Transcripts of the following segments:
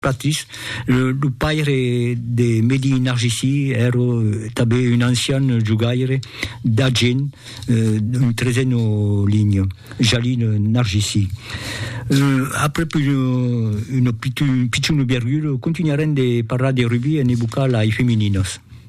Patis, lo paire de Mehdi Narjisi, èra tanben un ancian jogaire d'Agen, un trezeno linho, Jalil Narjisi. Aprèp un pichon obergulo, continuarem de parlar de rugbi en evocar lai femininas.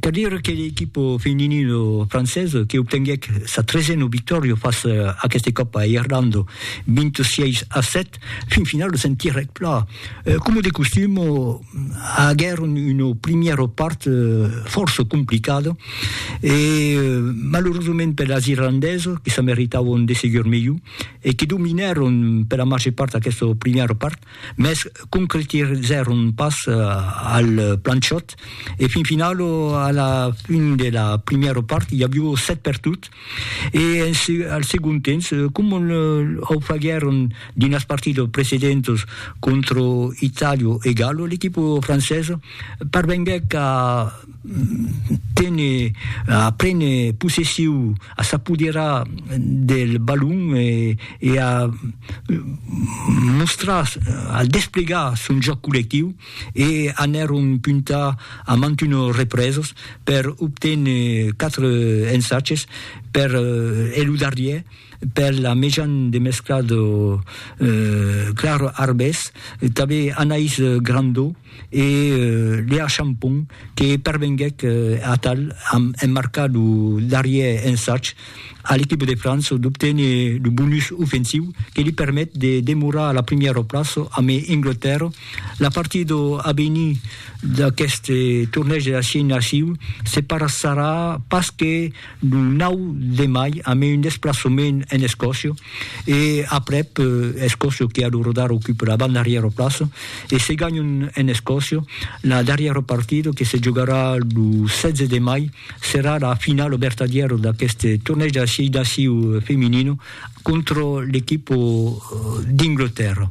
Cal dire que l'equipa feminina francesa que obtenguèc sa tresena victòria fas aqueste còp a Irlanda 26 a 7, fin finala se'n tirèc pla. Coma de costum, aguèron una primièra part fòrça complicada e malerosament per las irlandesas que se meritavan de segur melhor e que dominèron per la màger part aquesta primièra part, mès concretizèron pas al planchòt e fin final a la fin de la primièra part i avió 7 per tot e al segon temps coma o faguèron dins las partidas precedentas contra Itàlia e Galo l'equipa francesa parvenguèc a tene a prene possessiu, a s'apoderar del balon e, e a mostrar, a desplegar son jòc collectiu e anèron puntar a mantuno represes per obténer 4 ensatges per e lo darrièr per la mejan de mescla de Clara Arbès tanben Anaïs Grandau e Léa Champon que pervenguèc atal amb emmarcar lo darrièr ensatj a l'equipa de França d'obténer lo bonus ofensiu que li permet de demorar a la primièra plaça amb Anglatèrra. La partida a venir d'aqueste tornèg de la Xina Xiu se passarà pas que Lo 9 de mai amé un desplaçament en Escòcia e aprèp Escòcia que a lo rodar ocupe la banda darrièra plaça e se ganhon en Escòcia la darrièra partida que se jogarà lo 16 de mai serà la finala vertadièra d'aquest tornèig de la 6 naciu feminina contra l'equipa d'Ingltèrra.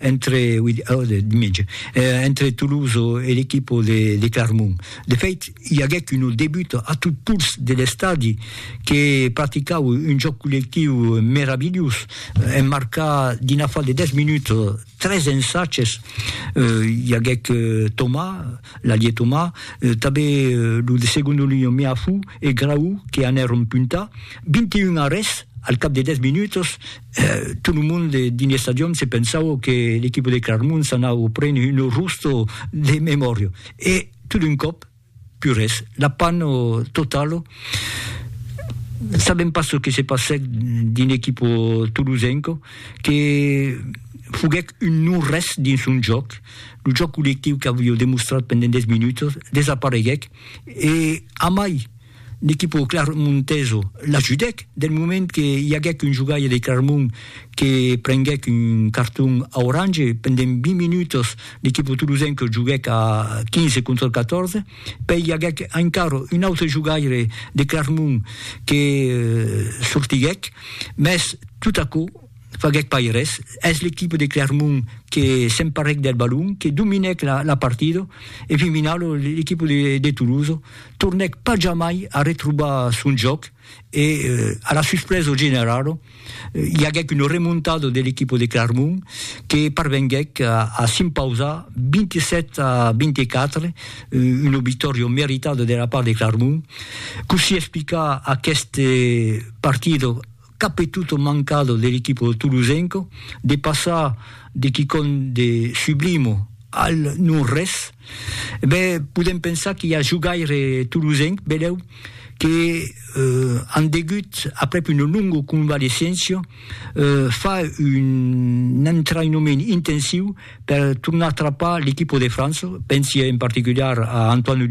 entre Tolosa e l'equipa de Clarmont. De fèit, i aguèc una debuta a tot pols de l'estadi que practicaue un jòc collectiu meravilhós, en marcar dins l'afar de 10 minutas tres ensatges, i aguèc Thomas, l'alier Thomas, tanben lo de segona linha Meafou e Graou que anèron puntar, 21 arrèsts al cap de 10 minutas, Tot lo mond dins l'estadion se pensava que l'equipa de Claremont s'anava prene un arrosto de memòria e tot d'un còp, pus res, la panna totala. Sabèm pas çò que se passèc dins l'equipa tolosenca que foguèc un non-res dins son jòc. Lo jòc collectiu qu'aviá demostrat pendent 10 minutas desapareguèc e amai! L'equipa clarmonteso l'ajudèc del moment que i aguèc un jogaire de Clarmont que prenguèc un carton aurange pendent 20 minutas, l'equipa tolosenca joguèc a 15 contra 14, pèi i aguèc encara un autre jogaire de Clarmont que sortiguèc, mès tot aquò. faguèc pas res, es l'equipe de Clermont que s'emparèc del balon, que dominèc la partida e fin finau l'equipe de Toulouse tornèc pas jamai a retrobar son jòc e a la suspresa generala i aguèc una remontada de l'equipe de Clermont que parvenguèc a s'impausar 27 a 24, una victòria meritada de la part de Clermont. Cossí explicar aquesta partida? qu'a petut o mancat de l'equipo tolosenco de passar de quicòm de sublimo al non res, e ben podem pensar qu'i a jogaire tolosenc, benlèu, que an degut, aprèp una longa convalescéncia, far un entraïnament intensiu per tornar trapar l'equipo de França, pensi en particular a Antoine Dupont,